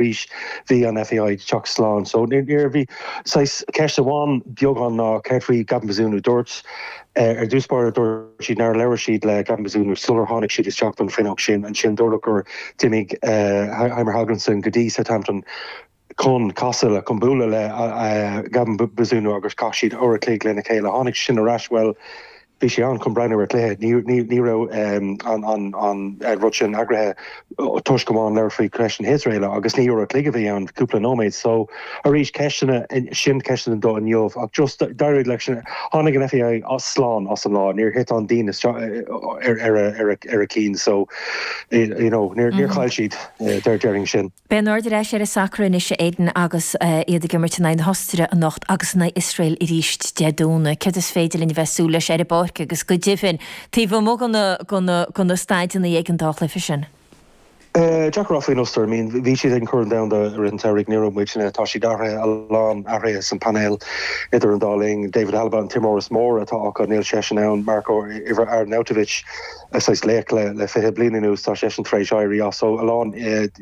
arís bhí an FAI ag teacht slán. So you know bhí saghas ceist amháin beagán ná céard faoi Gavin Bazunu? Dúirt ar dtús báire, dúirt siad nár labhair siad le Gavin Bazunu sular tháinig siad isteach don phainéal sin. Ansin dúradh gur d'imigh Heimir Hallgrímsson go dtí Southampton chun casadh le, chun bualadh le Gavin Bazunu agus chaith siad uair a chloig lena chéile. Tháinig sin ar ais, bhuel, bhí sé ann chun breathnú ar chluiche, ní raibh an rud sin eagraithe toisc go mba ann a labhair faoi ceist na hIosraeile agus ní uair an chloig a bhí ann, cúpla nóiméad. So, arís, ceisteanna, sin ceisteanna do inniu ach just dar ndóigh leis, tháinig an FAI slán as an lá, níor thit an díon isteach ar a cinn so, you know, níor chaill siad, déarfainn sin. Beidh an aird ar ais ar an sacar anois, a Aidan, agus iad ag imirt in aghaidh na hOstaire anocht agus in aghaidh Iosrael arís Dé Domhnaigh. Céard is féidir linn a bheith ag súil leis ar an bpáirc agus go deimhin taobh amuigh de na staideanna ag an dá chluiche sin? Deacair a rá faoin Ostair. I mean, bhí siad ag an Chorn Domhanda i rith an tsamhraidh nuair nach raibh muidne. Tá siad athraithe, a lán athruithe san painéal idir an dá linn. David Alaba an t-imreoir is mó atá acu, níl seisean ann. Marko, uimhir, Arnautovic. saghas laoch le fiche bliain anuas, tá seisean tar éis éirí as. So a lán,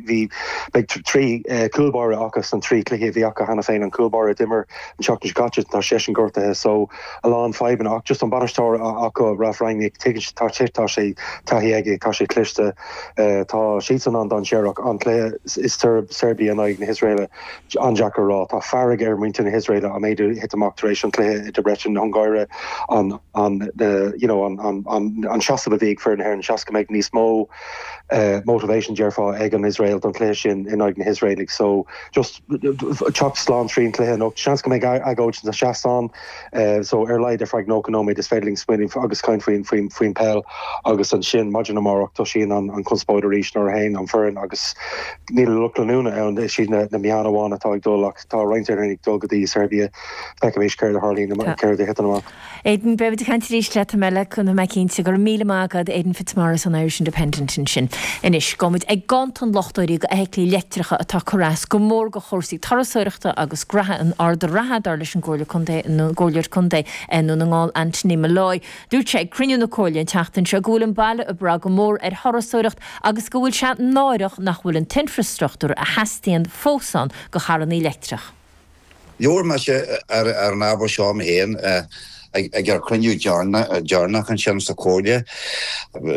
bhí, beidh trí cúl báire acu san trí cluichí a bhí acu cheana féin. An cúl báire a d'imir an tseachtain seo caite, tá seisean gortaithe. So a lán fadhbanna ach just an bainisteoir acu, Ralf Rangnick, tuigeann, tá sé, tá sé, taithí aige, tá sé cliste. Tá siadsan an-dainséarach. An cluiche i Seirbia in aghaidh na hIosraela. an-deacair a rá. Tá fearg ar muintir na hIosraela an méid a thit amach tar éis an chluiche i Debrecen na hUngáire an you know an seasamh a bhí ag foireann na hÉireann. Seans go mbeidh níos mó motivation déarfá ag an Iosrael don chluiche sin in aghaidh na hIosraelaigh. So just teacht slán trín chluiche anocht. Seans go mbeidh agóid sna seastán. so ar laghad ar feadh nócha nóiméad is féidir linn smaoineamh agus caint faoin faoin faoin peil agus ansin maidin amárach tosaíonn an an conspóid arís nuair a théann an foireann agus níl lucht leanúna ann is iad na na meáin amháin atá ag dul ach tá roinnt ag dul go dtí Serbia feicfimid céard a tharlaíonn, céard a thiteann amach. Aidan, beimid ag caint arís leat am eile, tá mé cinnte, go raibh míle maith agat Aidan Fitzmaurice ón Irish Independent ansin. Anois, gabhfaimid chuig ganntan luchtairí do fheithiclí leictreacha atá ag cur as go mór do chúrsaí turasóireachta agus gnóthaí in Ard an Rátha dar leis an gComhairle Contae, an gComhairleoir Contae Dhún na nGall Anthony Molloy. Dúirt sé ag cruinniú na Comhairle an tseachtain seo go bhfuil an baile ag brath go mór ar thurasóireacht agus go bhfuil sé náireach nach bhfuil an t-infreastruchtúr a theastaíonn fós ann do charrannaí leictreach. Labhair mise ar an ábhar seo mé féin ag ár gcruinniú deireanach ansin sa Chomhairle.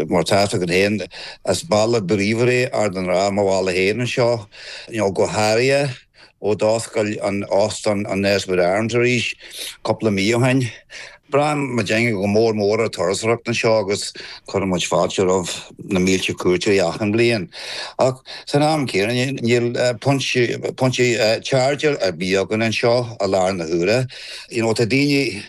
Mar atá a fhios agat féin, is baile bríomhar é Ard an Rátha, mo bhaile féin anseo go háirithe. ó d'oscail an Óstán an Nesbitt Arms arís cúpla mí ó shin. Braitheann muidinne go mór mór ar turasóireacht anseo agus cuireann muid fáilte roimh na mílte cuairteoirí achan bhliain. Ach san am céanna níl pointe chargeáil ar bith againn anseo i láthair na huaire. You know, tá daoine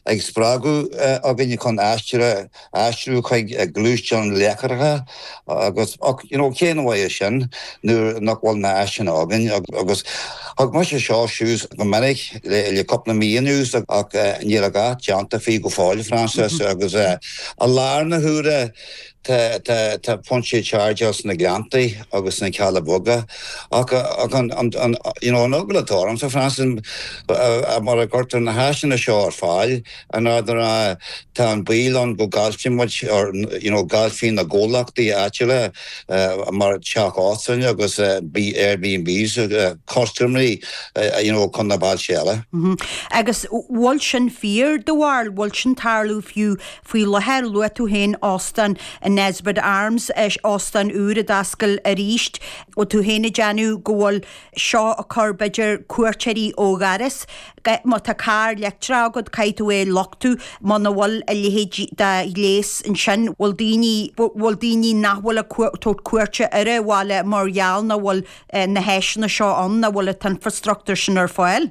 á spreagadh againn chun aistir a. aistriú chuig gluaisteáin leictreacha agus you know cén mhaith é sin nuair nach bhfuil na háiseanna againn agus thóg mise seo suas go minic le le cúpla mí anuas ach níl a dhath déanta faoi go fóill Frances agus eh, i láthair na huaire tá tá tá pointe chargeáil sna Gleanntaí agus sna Cealla Beaga ach ach an an an you know an eagla atá ormsa Frances mura gcuirtear na háiseanna seo ar fáil in Ard an Rátha, tá an baol ann go gcaillfidh muid, or you know gcaillfidh na gcomhlachtaí áitiúla mar teach óstán agus Airbnbs custaiméirí you know chun na bailte eile. Agus bhfuil sin fíor do bharúil bhfuil sin ag tarlú fiú faoi láthair, luaigh tú féin óstán an Nesbitt Arms, óstán úr a d'oscail arís, bhfuil tú féin ag déanamh go bhfuil seo ag cur b'fhéidir cuairteoirí ó dhoras. Má tá carr leictreach agat, caithfidh tú é a luchtú. Muna bhfuil a leithéid de ghléas ansin, bhfuil daoine, bhfuil daoine nach bhfuil ag tabhairt cuairte ar a' bhaile mar gheall nach bhfuil na háiseanna seo ann, nach bhfuil a' t-infreastruchtúr sin ar fáil.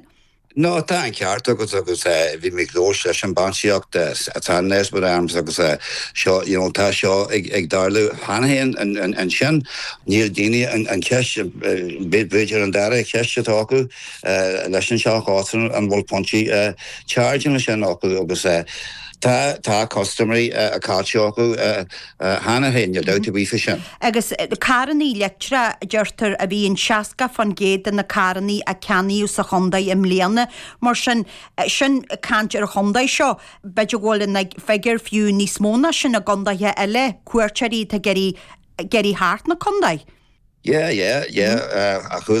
Tá an ceart agat agus bhí mé ag labhairt leis an mbainistíocht atá in Nesbitt Arms agus seo, you know, tá seo ag tarlú cheana féin ansin. Níl daoine an cheist, b'fhéidir an dara ceist atá acu. leis an seacht áitreabh an bhfuil pointe chargeála ansin acu agus tá custaiméirí caillte acu cheana féin, níl dabht ar bith faoi sin. Agus carrannaí leictreacha, a deirtear, a bhí i 60% de na carrannaí a ceannaíodh sa chontae i mbliana. Mar sin, sin caint ar an chontae seo, b'fhéidir go bhfuil an figiúr fiú níos mó ná sin i gcontaetha eile, cuairteoirí atá ag iarraidh theacht 'na contae. Yeah, yeah, yeah, chuala